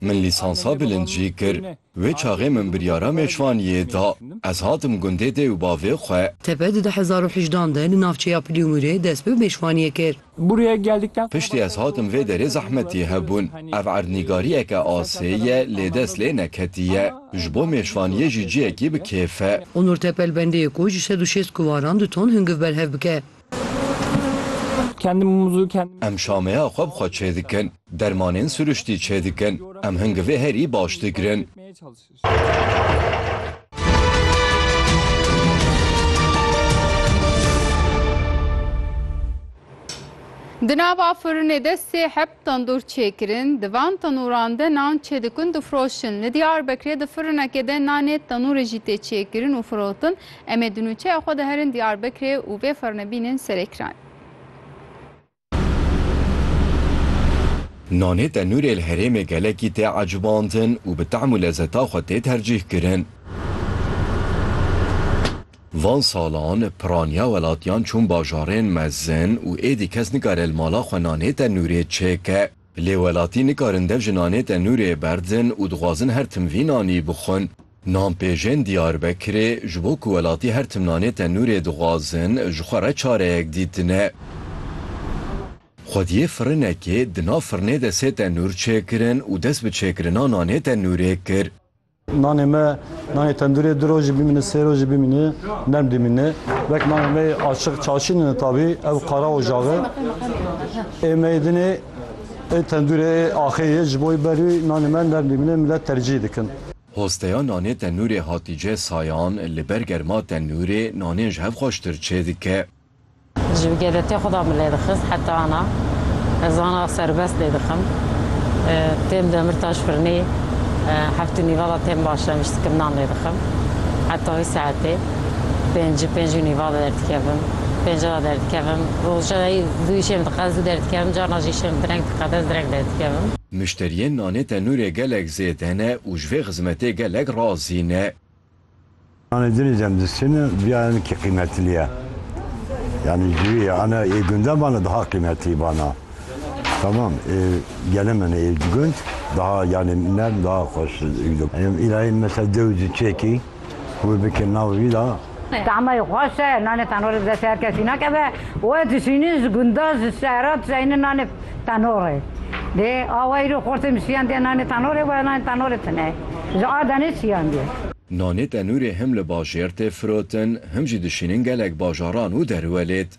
Min lîsansa bilind jî kir. Wê çaxê min biryara mêşvaniyê da. Ez hatim gundê dê û bavê xwe. Tepe di du hezar û hejdeh an de li navçeya Piliûmûrê dest bi mêşvaniyê kir. Piştî ez hatim vê derê zehmetî hebûn. Ev erdnîgariyeke asê ye lê dest lê neketiye. Ji bo mêşvaniyê jî ciyekî bi kêf e. Onur Tepel bendeyê ku ji sed û şêst kuvaran du ton hungiv berhev bike. Em şameya xwe bi xwe çêdikin, dermanên siruştî çêdikin, em hingi vê herî baş digirin. Di nava firinê de sê heb. Tendûr çêkirin, di van tenûran de nan çêdikin difroşin. Li Diyarbekirê di firinekê de nanê tenûrê jî tê çêkirin û firotin. Em ê di nûçeya xwe de herin Diyarbekirê û vê firine bînin serêkiranê. Nanê tenûrê li herêmê gelekî tê ecibandin û bi tehm û lezeta xwe tê tercîhkirin. Van salan piraniya welatiyan çûn bajarên mezin û êdî kes nikare li mala xwe nanê tenûrê çêke. Lê welatî nikarin dev ji nanê tenûrê berdin û dixwazin her tim vî nanî bixwin. Nan pêjên Diyarbekirê ji bo ku welatî her tim nanê tenûrê dixwazin ji xwe re çareyek dîtine. Xwediyê firinekê di nav firinê de sê tenûr çêkirin û dest bi çêkirina nanê tenûrê kir. Nanê me nanê tendurê du rojî bimîne sê rojî bimîne nerm dimîne. Wek nanê me açiq çaşînine tabî ew qara û jaxi. Ê meydinê ê tendurê ê axê ye ji bo wî berî nanê me nerm dimîne milet tercîh dikin. Hosteya nanê tenurê Hatîce Sayan li ber germa tenurê nanên ji hev xweştir çêdike. Ji bi geletê xwe de min lê dixist heta ana ez ana serbest lê dixim. Têm Demirtaş Firinê heft û nîva de têm başem ji dikiminan lê dixim. Heta wê saetê pêncî pênc û nîva de derdikevim. Pênca de derdikevim. Roja yê zû îşêm diqez zû derdikevim carna jî îşêm direng diqez ez direng derdikevim. Muşteriyên nanê tenûrê gelek zêde ne û ji vê xizmetê gelek razî ne. Anê dinê demdistîne biya ene kî qîmetilî ye. Yanî ji wî ye ene ê gunde bana daha qîmetilî bana. Tamam ê gele min ê ji gund daha yanî nerm daha xweş dû. Em îlayê mesela dew di çêkî wê bike nav wî da. Tamayê xweş e, nanê tenore di destê her kesî nakeve. Wê dişînî ji gunda ji şehra dişeynî nanê. Tanorê. Dê awa îro xortê misiyan dê nanê tanorê wa nanê tanorê tine. Ji a denê çiyan dê. Nanê tenûrê him li bajêr tê firotin him jî dişînin gelek bajaran û derwelêt.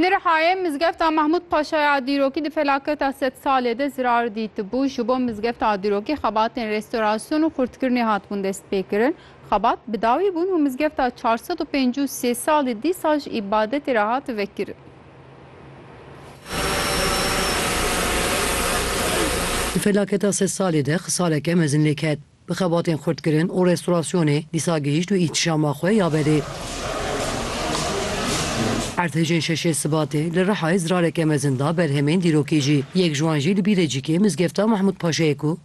Li Rihayê Mizgefta Mahmûd Paşa ya dîrokî di felaketa sed salê de zirar dîtibû. Ji bo mizgefta dîrokî xebatên restorasyon û xurtkirinê hatibûn destpêkirin. Xebat bi dawî bûn û mizgefta çar sed û pêncî û sê salî dîsa ji îbadetê re hat vekirin. Di felaketa sed salî de xisaleke mezin lê ket. Bi xebatên xurtkirin û restorasyonê dîsa gihîşt û îhtîşama xwe ya berê. Erdhejên şeşê Sibatê li Rihayê zirareke mezin da berhemên dîrokî jî. Yek ji wan jî li Bîrecîkê mizgefta Mehmûd Paşayê ku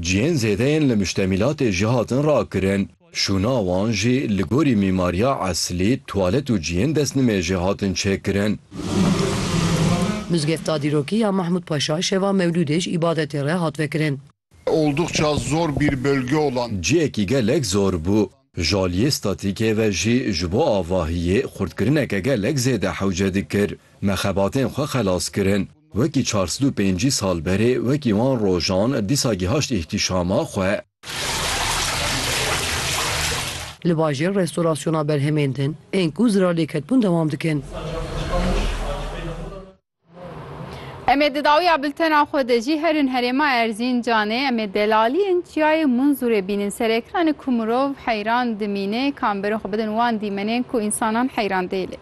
Cihên zêde yên li muştemîlatê jî hatin rakirin. Şûna wan jî li gorî mîmariya eslî, tuwalet û cihên destnimêjê hatin çêkirin. Mizgefta dîrokî ya Mahmûd Paşa şeva Mewlûdê ji îbadetê re hat vekirin. Oldukça zor bir bölge olan. Cihekî gelek zor bû. Ji aliyê statîkê ve jî ji bo avahiyê xurtkirineke gelek zêde hewce dikir. Me xebatên xwe xelas kirin. Wekî çar sed û pêncî sal berê, wekî wan rojan, dîsa gihaşt îhtîşama xwe. Li bajêr restorasyona berhemên din, ên ku zirarlêketbûn dewam dikin. Em ê di dawiya biltena xwe de jî herin herêma Erzîncanê, em ê delaliyên çiyayê Munzûrê bînin. Serekran e ku mirov heyran dimîne, kamberên xwe bidin wan dîmenên ku însanan heyran tê lê.